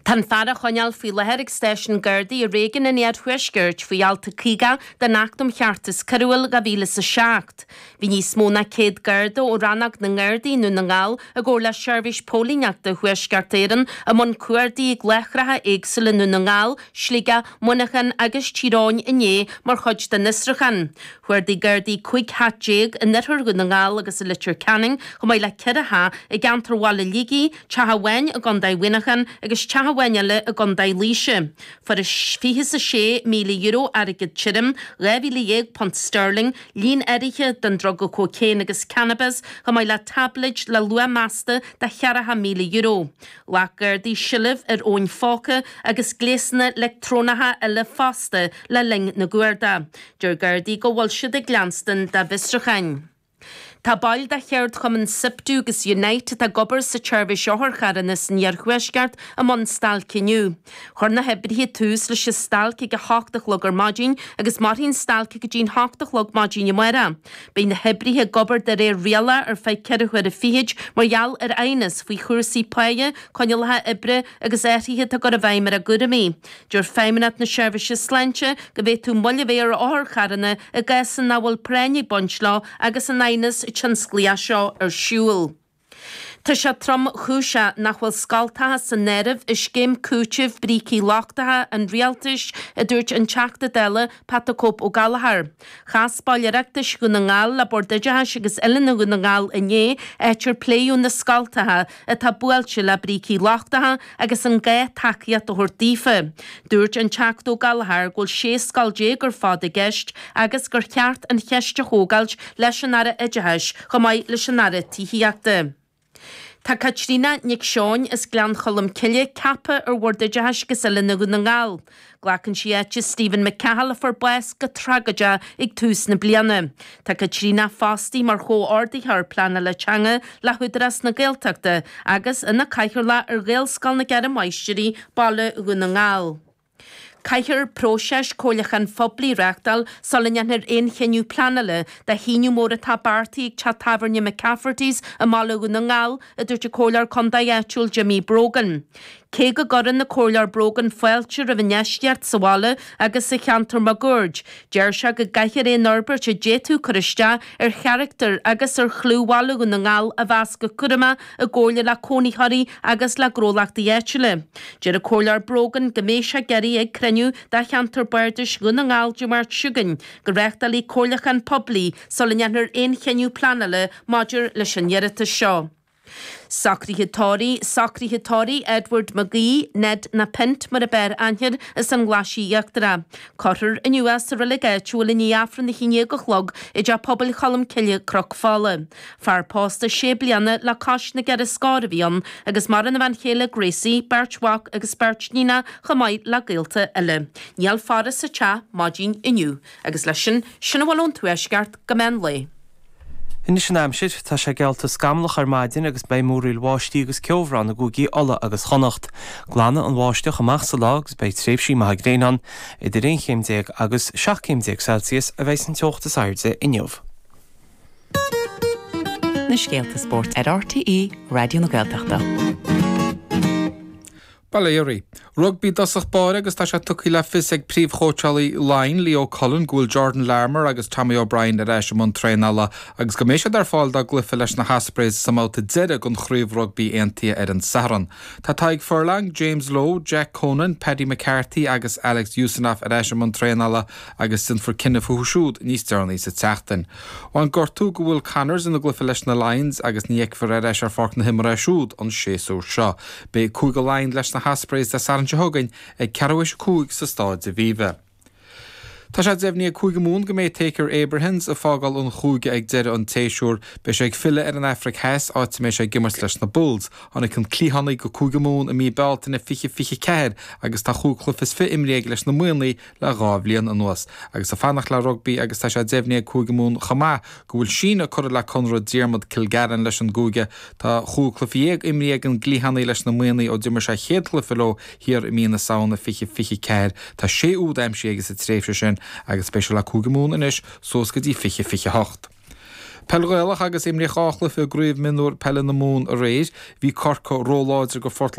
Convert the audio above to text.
Tá an fear á choinneáil faoi láthair ag Stáisiún Gardaí i Réigiún an Iarthuaiscirt faoi Alt a 50 den Acht um Cheartas Coiriúil 2007. Bhí níos mó ná 100 Garda ó Rannóg na nGardaí i nDún na nGall i gcomhar le Seirbhís Póilíneachta Thuaisceart Éireann i mbun cuardaigh ag láithreacha éagsúla i nDún na nGall, Sligeach, Muineachán agus Tír Eoghain inné mar chuid den fhiosrúchán. Chuardaigh Gardaí 15 teach in oirthear Dhún na nGall agus i Leitir Ceanainn chomh maith le 4 theach i gceantar Bhaile Shligigh, Teach amháin i gContae Mhuineacháin agus teach amháin eile i gContae Laoise. Fuarthas fiche is a sé míle euro, airgead tirim, dhá mhíle dhéag punt steirling, líon áirithe den druga cocaine agus cannabas, chomh maith le táibléid le luach measta de cheathracha míle euro. Ghlac Gardaí seilbh ar fhóin phóca agus gléasanna leictreonacha eile fosta le linn na gcuardach. Deir Gardaí go bhfuil siad ag leanstan dá bhfiosrucháin. Tá baill de cheardchumann Siptu agus Unite atá ag obair sa tseirbhís otharcharranna san iarthuaisceart i mbun stailce inniu. Chuir na hoibrithe tús leis an stailc ag a hocht a chlog ar maidin agus mairfidh an stailc go dtí a hocht a chlog maidin amárach. Beidh na hoibrithe ag obair de réir rialach ar feadh ceithre huaire fichid mar gheall ar aighneas faoi chúrsaí páighe, coinníollacha oibre agus athruithe atá á gcur i bhfeidhm ar a gcúraimí. Deir Feidhmeannacht na Seirbhíse Sláinte go bhféadfadh moill a bheith ar otharcharranna i gcás nach bhfuil práinn ag baint leo agus an t-aighneas tionsclaíoch seo ar siúl. Tá sé tromchúiseach nach bhfuil scoltacha san áireamh i scéim cúitimh brící lochtacha an Rialtais, a dúirt an Teachta Dála Pat 'The Cope' Ó Gallachóir. Chas baill Oireachtais Dhún na nGall le Bord Oideachais agus Oiliúna Dhún na nGall inné, áit ar pléadh na scoltacha, atá buailte le brící lochtacha agus an gá tacaíocht a thabhairt daofa. Dúirt an Teachta Ó Gallachóir go bhfuil 16 scoil ar fad i gceist agus gur cheart an cheist a thógáilt leis an Aire Oideachais chomh maith leis an Aire Tithíochta. Tá Caitríona Nic Seoin as Gleann Cholm Cille ceaptha ar Bhord Oideachais agus Oiliúna Dhún na nGall. Glacann sí áit Stephen McCahill a fuair bás go tragóideach ag tús na bliana. Tá Caitríona fostaí mar chomhordaitheoir pleanála teanga le hÚdarás na Gaeltachta agus ina cathaoirleach ar Ghaelscoil na gCeithre Máistrí, Baile Dhún na nGall. Caithfear próiseas comhairliúcháin phoiblí a reáchtáil sula ndéanfar aon chinneadh pleanála do shíneadh mór atá beartaithe ag teach tábhairne McCafferty's i mBaile Dhún na nGall, a dúirt an Comhairleoir Contae áitiúil Jimmy Brogan. Cé go gcuireann an Comhairleoir Brogan fáilte roimh an infheistíocht sa bhaile agus sa cheantar máguaird, deir sé go gcaithfear aon fhorbairt a d'fhéadfadh cur isteach ar charachtar agus ar chlú Bhaile Dhún na nGall a mheas go cúramach i gcomhairle le cónaitheoirí agus le gnólachtaí áitiúla. Deir an Comhairleoir Brogan go mbeidh sé ag iarraidh ag cruinniú de Cheantar Bardais Dhún na nGall Dé Máirt seo chugainn go reáchtálfaí comhairliúchán poiblí sula ndéanfar aon chinneadh pleanála maidir leis an iarratas seo. Socruithe tórraimh, socruithe tórraimh Edward McGee, Ned na Pint mar ab fhearr aithne air, as an nGlaisigh Íochtarach. Cuirfear inniu é sa reilig áitiúil i ndiaidh Aifreann a haon déag a chlog i dTeach Pobail Cholm Cille, Cnoc Fola. Fear pósta sé bliana le cois na gceithre scór a bhí ann, agus maireann a bhean chéile Gracie, beirt mhac agus beirt níonacha chomh maith le gaolta eile. Níl faire sa teach maidin inniu. Agus leis sin, sin a bhfuil ón Tuaisceart go meán lae. Anois an aimsir, tá sé geallta scamallach ar maidin agus beidh múraíl bháistí agus ceobhrán i gCúigí Uladh agus Chonnacht. Glanfaidh an bháisteach amach sa lá agus beidh tréimhsí maithe gréine ann. Idir aon chéim déag agus seacht gcéim déag Celsius a bheidh an teocht is airde inniu. Na scéalta spóirt ar RTÉ Raidió na Gaeltachta. Bail ó Dhia oraibh. Rugbaí i dtosach báire agus tá sé tugtha le fios ag príomhchóitseálaí Laighean, Leo Cullen, go bhfuil Jordan Larmour agus Tommy O'Brien ar ais i mbun traenála agus go mbeidh siad ar fáil dá gcluiche leis na hOspreys sa mbabhta deiridh den Chraobh Rugbaí Aontaithe ar an Satharn. Tá Tadhg Furlong, James Lowe, Jack Conan, Paddy McCarthy agus Alex Usanov ar ais i mbun traenála agus déanfar cinneadh fúthu siúd níos deireanaí sa tseachtain. Bhain gortú do Will Connors ina gcluiche leis na Lions agus ní fheicfear ar ais ar pháirc na himeartha é siúd an séasúr seo. Beidh Cúige Laighean leis na hOspreys Dé Sathairn seo chugainn ag ceathrú tar éis a cúig sa Staid Aviva. Tá sé deimhnithe ag Cúige Mumhan go mbeidh Thaakir Abrahams ag fágáil an chúige ag deireadh an tséasúir. Beidh sé ag filleadh ar an Afraic Theas, áit a mbeidh sé ag imirt leis na Bulls. Tháinig an cliathánaí go Cúige Mumhan i mí Bealtaine 2024 agus tá chúig chluiche is fiche imrithe aige leis na Muimhnigh, le dhá bhliain anuas agus ag fanacht le rugbaí agus tá sé deimhnithe ag Cúige Mumhan chomh maith go bhfuil síneadh curtha le conradh Diarmuid Kilgallen leis an gcúige. Tá chúig chluiche dhéag imrithe ag an gcliathánaí leis na Muimhnigh ó d'imir sé a chéad chluiche leo thiar i mí na Samhna 2024. Tá sé úd aimsithe aige sa tréimhse sin agus beidh sé le Cúige Mumhan anois suas go dtí 2028. Peil Ghaelach agus imríodh dhá chluiche i gCraobh Mionúr Peile na Mumhan aréir. Bhí Corcaigh ró-láidir do Phort